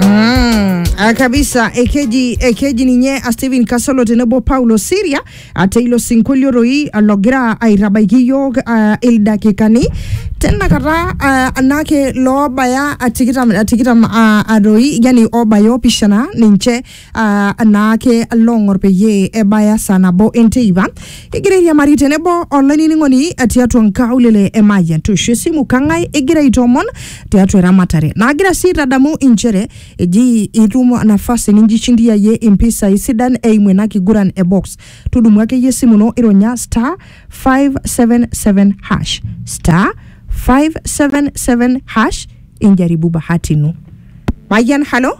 Mm, ah, kabisa ekeji ekeji ninye a Stephen Kasolo tenebo Paulo Siria ate ilo sinkolio roi ah, logira aitabaiki iyiok ah, ildakikani tenakata ah, anake loobaya ah, tikitam ah, tikitam ah, ah, roi yani obaya opishana ninche ah, anaake loong'or peyie ebaya saa nabo enteipa kigira airiamari tenebo olainining'oni tiatua nkaulele e Mayian toosho esimu kang'ae igira aitoomon tiatua eramatare naagira sii aitadamu inchere eji itum nafasi ninjishindiyayie impisai sidan eimu ena kiguran e box tudumu akeyie esimu ino ironya star 577 hash star 577 hash injaribu bahati ino Mayian halo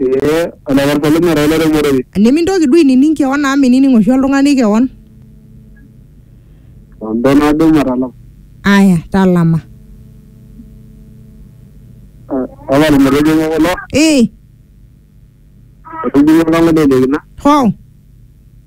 Ee olaparpaloni ora olairemorei. Nimintoki duo ainining keon amu minining oshi oltung'ani keon. Ando nado matalama. Aya, talama. Ore ilmotonyok kulo, Ee, etijing'a olang'ole le kina. hoo.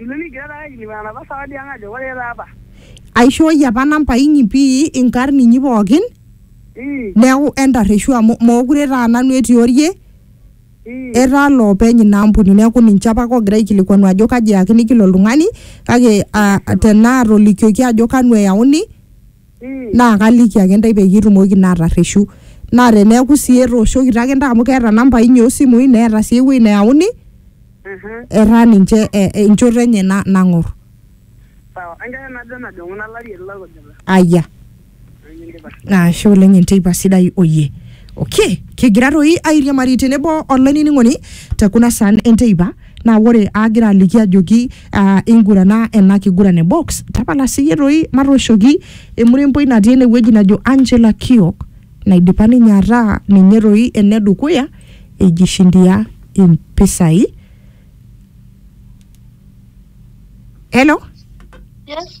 Ilo nigira taata aikilikuana napa sawadi ang ajo koree taa apa? Aishooyie apa namba inyi pii inkarn inyi pookin Ii, neeku entarreshu amu mookure taa nanu etii orie ii. etaa loopeny ina ampuni neeku ninche apake oogira aikilikuanu ajo kaji eyakini kila oltung'ani kake uh, tenaa atolikioki ajo kanu eyauni naa kaliki ake intae peyie itumoki naa atarreshu naa teneeku sii etooshokito ake intae amu keeta inambai inyi osimui neeta sii ewueji neyauni Mhm. etaa ninche eh, enchoto enye na- nang'orr Sawa. Enkerai najo najong'u nalari ele kujita. ayia Nikindipa. ashe oleng enteipa sidai oyie okay kigira toi airiamari tenebo olainining'oni te kuna saan enteipa Naa ore aagira aliki ajoki aa ingurana ena kiguran e box, tapala siyie toi matooshoki emuremboi natii ene wueji najo Angela Kiok naidipa ninye ataa ninye toi ene dukuya eijishindia impisai. Hello? Yes.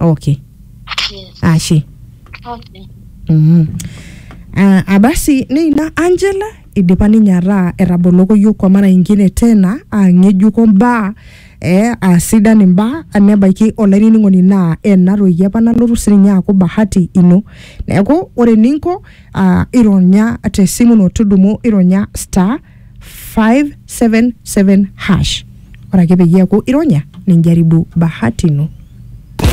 okay Yes. ashe Okay. Mhm. Ah, abasi neina angela idipa ninye ataa etaboloko yiok kwa mara ingine tena aa ng'ejuko mbaa eh, aa sidan imbaa nebaiki olainining'oni naa ena toki apa nalotu sininye aaku bahati ino neeku ore eninko ah, ironya tesimu ino tudumu ironya star 577 hash ore ake peyie eeku ironya ninjaribu bahati ino